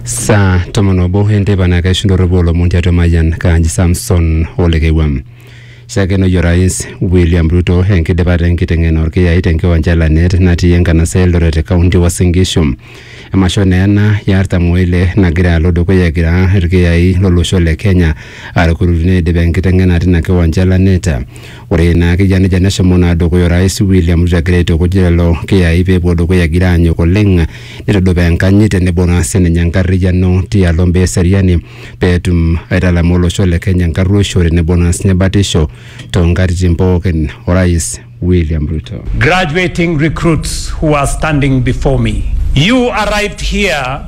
saa tomon obo enteipa naa kaishindorropu olomon tiatua Mayian Kaanji Samson Olekewam. Shakenoi Orais William Ruto enkidipata enkiteng'ena orkiyai tenkiwanja e Lanet natii enkanasa e Eldoret te kaunti e Uasin Gishu. Emasho naa ena e artam oile nagira alo dukuya egira irkiyai lolosho le Kenya arukurukino eidip enkiteng'ena tina kiwanja e Lanet. Ore naa ake eyia nejia neshomo naa dukuya Orais William Ruto egira aitukuj lelo kiyai pee epuo dukuya egira aanyok oleng neitudupaa enkanyit tenebo naa sininye enkarriyiano tialo imbaa eseriani pee etum aitalamaa olosho le Kenya enkarruoisho tenebo naa sininye batisho toonkatitin pookin. Orais William Ruto. graduating recruits who are standing before me. You arrived here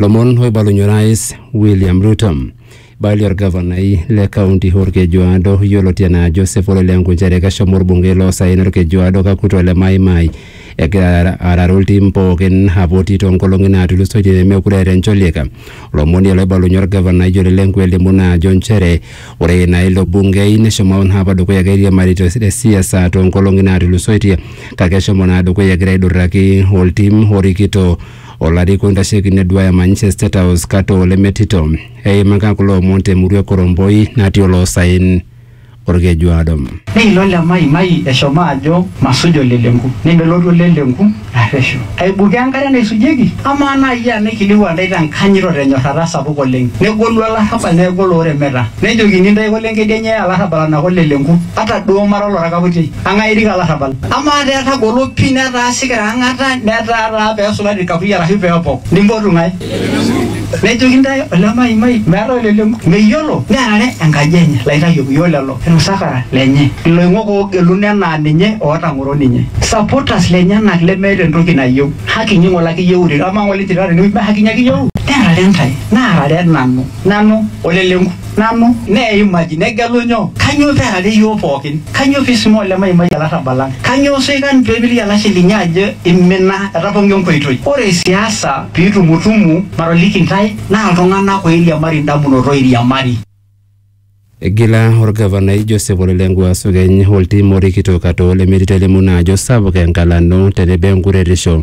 lomon oibalunye orais william ruto baili orgavanai le kaunti orkejuado yioloti anaa joseph ole lenku nchere keshomo orbungei loosaen orkejuado kakuto le maimai egira araru iltim pookin apoti toonkolong'i naatulusoitie nemekure eeta encholiek lomoni oloibalunye orgavanai ole lenku elimu naa ajo nchere Ore ina ilo bungei neshomo naa apa dukuya egira airiamari te te siasa too nkolong'i naatulusoitie kake eshomo naa dukuya egira aidurraki oltim orikito olarikoni oitasheki neduaya manyisho e State House kata oo lemetito. Eimaka kulo omon te murua e Koromboi natii oloosaen Olkejuado. Neilo Lemaimai eshomo ajo masuj olelenku. Nemelotu olelenku. arreshu aibukoo enkare naisujieki? Amaa naa iyie ena eikilikwaa intae te nkanyit o te nyorrata sapuk oleng, negolu olarrabal neaku olooremeta, nejokini intae kole enkedienye eye olarrabal anaa kole le nku, ata duo mara olorakaputi, eng'ae erik olarrabal? Amaa taa etagolo pii netaa sikira ang'ata, netaa taa pee esulari ilkapuyia arashu pee epok, nimpotu ng'ae? Nejoki intae ole maimai meeta oleleng'u, meyiolo nearare enkaji enye, laitayioki o lelo inosakara lenye, iloing'ok oogeluno enaa ninye ootang'oro ninye, supporters lenyenak lemeeta entoki nayieu, haki inyi ng'ole ake iyieurere, amaa ng'ole inchirita tenewueji mee haki inyi ake iyieu? Nearare intae, naarare nanu, nanu oleleng'u. nanu, neimaki, negelu nyoo? Kanyoo pee earare iyiook pooki? Kanyoo pee eisuma olemaimai olarrabal lang? Kanyoo soikan pee eimiliki olashe linyi ajo eimina, etapong'o enkoitoi? Ore siasa pee itumutumu, matoliki intae, naa iltung'ana ooiriamari indamunot ooiriamari. Egila olgavanai Joseph Ole Lenku Asukeny oltim orikito Katoo lemetii te Lemuna ajo sapuk engalano tenebo enkuretisho.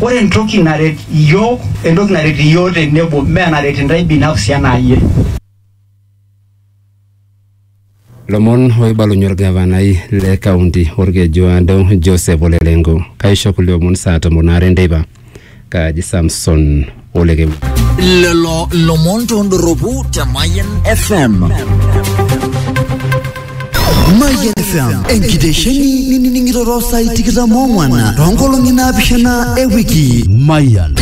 Ore entoki naret iyiook, entoki naret iyiook tenebo mee enaret intae binafsi anaa iyie. Lomon oibalunye olgavanai le kaunti Olkejuado Joseph Ole Lenku. Kaisho kulie omon saa tomon aare enteipa. Kaaji Samson. ole kemwa lelo lomon tondoropu te Mayan FM. Mayan FM, enkitesheni ninining'iroro saai tikitam ong'wan toonkolong'i naapishana e wiki. Mayan.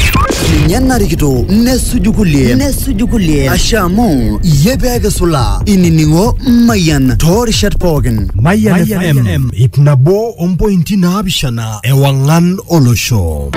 Ninye narikito nesuju kulie nesuju kulie ashe amu iyie pee kisula inining'o Mayan toorishat pookin. Mayan FM, ip nabo ompointi naapishana ewang'an olosho.